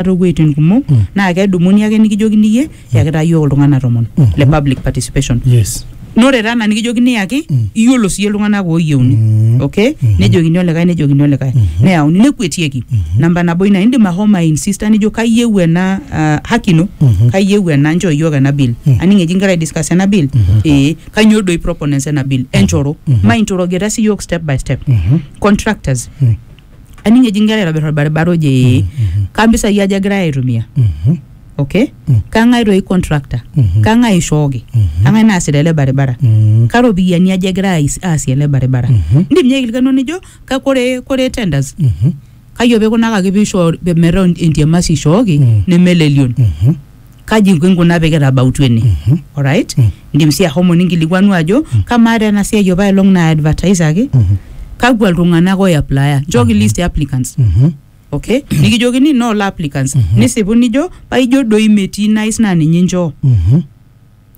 enkiroroto too wueitin kumok naa kedumuni ake nikijokini iyie yakitaa iyiook iltung'anak tomon le public participation yes naa ore taa ena nikijokini yaki iyiolo siyie iltung'anak ooyieuni okay nejokini olikae nejokini olikae neyauni nekuetieki namba nabo ina indim ahomo ainsista nijo kayieu ena ah, haki ino kayieu ena nchoo iyiook ena bill aning eji inkira aidiskas ena bill ee kanyoo doi proponents ena bill enchoro mainchorogeta sii iyiook step by step contractors aning eji nkera aitobir orbaribara oje ee kaa mpisai aja egirai aitumia Mhm. okay Mm. kang'ae toi contractor Mhm. kang'ae ishooki Mhm. kang'ae naasita ele baribara Mhm. karopiyiani aja egira ais- aasie ele baribara Mhm. indim ninye aikilikuanu nijo ka- kore kore tenders Mhm. kayioo pikunakaki piishoo metaa entiamasi ishooki Mm. nemelelion Mhm. kaji inkunaa pee kitabautua ene Mhm. alright Mm. indim sii ahomo ninkilikuanu ajo Mm. kamaa taa ena siai opa elong na advertisaki Mhm. kakwa iltung'anak oiaplaya nchooki list e applicants Mhm. okay nikijokini noolo applicants Mhm. nisipu nijo paijo doi metii nice naa ninye inchoo Mhm.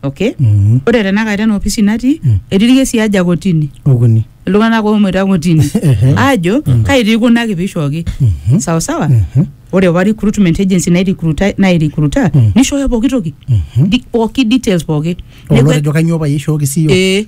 okay Mhm. ore tenakata ena ofisi natii Mm. etii irkesi aja kotini okuni iltung'anak oomoita kotini Ehe. aajo kai tii kuna kipishooki Mhm. sawa sawa Mhm. ore apa recruitment agency nairecruita nairecruita Mm. nishooyo pooki toki Mhm. Di- pooki details pooki Neeku- olotejo kanyoo payie ishooki siiyio ee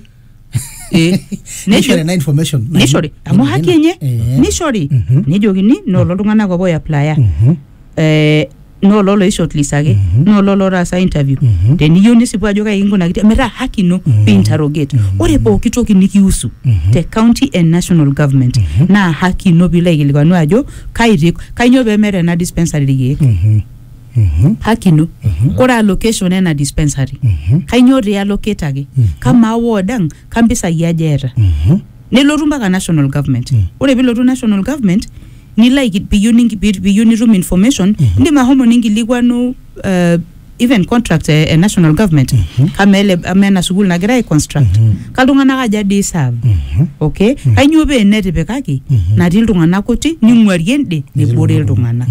Eh, nishori ena information nishori amu haki enye Eh. nishori Mhm. nejokini noolo iltung'anak obo oiaplaya Mhm. eh, noolo loishortlisaki Mhm. noolo lotaasa interview Mhm. teniyieu nisipu ajo kai kinkunakitia metaa haki ino Mhm. piinterrogate Mhm. ore pooki toki nikiusu Mhm. te county and national government Mhm. naa haki ino piilo aikilikwanu ajo kai ti- kainyoo pemeeta ena dispensary irkeek Mhm. haki ino ore allocation ena dispensary kainyoo ti allocataki kamaa ward ang kampisai aja eeta nelotu mpaka national government ore pilotu national government nilo aiki- piyieu ninki- pi- piyieu nitum information indim ahomo ninkilikuanu eh, even contract e e national government kamaa ele amaa ena sukuul nagira ai construct kaltung'anak aja dii serve okay kainyoo pee netipikaki natii iltung'anak kuti ning'uarie ende nebore iltung'anak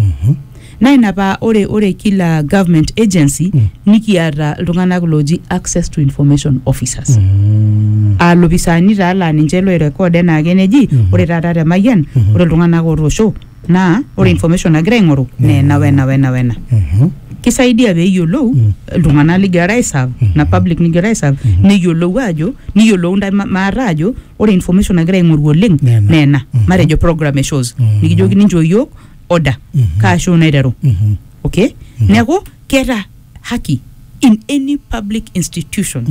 Naa ina paa ore ore kila government agency nikiata iltung'anak looji access to information officers. Aa lopisaani taa laa ninche loi record enaake neji ore taata te Mayian ore iltung'anak ootoosho naa ore information nagira aing'oru naa ena wena wena wena. Kisaidia peeyiolou iltung'anak ligirara ai serve ina public nigirara ai serve neyiolou aajo niyiolou intae maate aajo ore information nagira aing'oru oleng naa ena. Matejo program e SHOZ nikijokini inchoo iyiok order kaashu naiteru okay neeku keeta haki in any public institution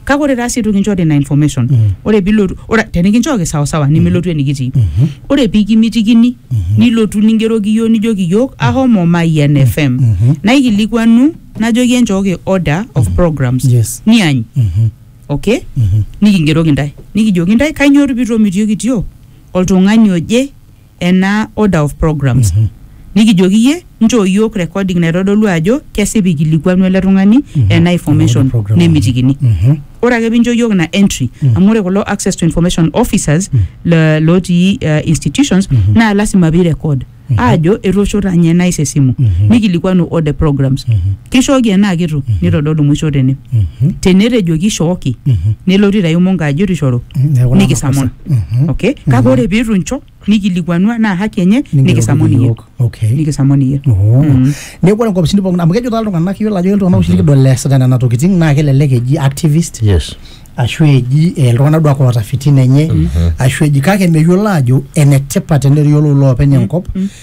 kake ore taa sii itu kinchori ina information ore pilotu ore tenikinchooki sawasawa nimilotu enikitii ore pikimitikini nilotu ningeroki yiok nijoki yiok ahomo Mayian FM naikilikuanu najoki enchooki order of programs Yes. niany okay nikingeroki ntae nikijoki ntae kainyoo pitomitioki tio oltung'ani oje ena order of programs nikijoki iyie nchoo iyiook recording naitodolu ajo kesipa ikilikuanu ele tung'ani ena information program. nemitikini Mhm. ore ake pincho iyiook ina entry amu ore kulo access to information officers le- lotii uh, institutions naa lasima pii record aajo etoosho tanye nais esimu nikilikuanu all the programs kishooki enaa kitu nitodolu mwisho tene Mhm. tenetejoki ishooki Mhm. nelotu aitayu mongo ajo etu ishoru Neeku naa nikisamon makosa. okay kake ore piitu incho nikilikuanua naa haki enye nikisamu ninye Nikisamu okay nikisamu ninye Oh. neeku ore nkopisini pookin amu kejo taa iltung'anak yiolo ajo ketii iltung'anak oshi likidol eesita nena tokiting naa kelelek eji activist yes ashu eji eh, iltung'anak duak oota fitina enye ashu eji kake meyiolo ajo enetipat teneyiolou loopeny enkop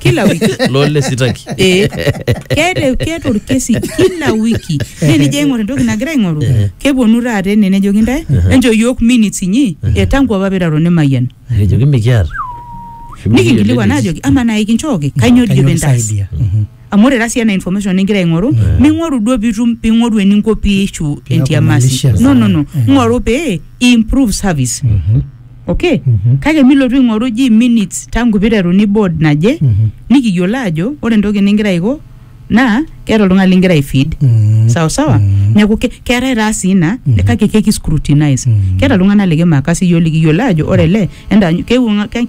kila wiki lole sitaki Eh, keeta keeta orkesi kila wiki naa enijo aing'or entoki nagira aing'oru Eh. keponu taata ene nejoki ntae enchoo yiok minutes inyi e tangu apa piraro nemayian ekijoki mikiata nikinkilikuan ajoki ama naa ikinchooki kainyoo dijo pintaas kisaidia. Mhm. amu ore tasi ena information ningira aing'oru Yeah. ming'oru duo pitum ping'oru eninko piishu Piaku entiamasi malicious. no no no Yeah. ng'oru pee improve service Mhm. okay kake milotu aing'oru ji minutes tangu piteruni board naje Mhm. nikiyiolo ajo ore entoki ningira aiko naa keeta oltung'ani lingira aifeed Mm. sawa sawa Mm. neeku ke- keetae taa sii ina Mhm. kake keki scrutinize Mm. keeta iltung'anak likimakasi yiok likiyiolo ajo ore ele enda keewuo ng'a- keewuo ng'a-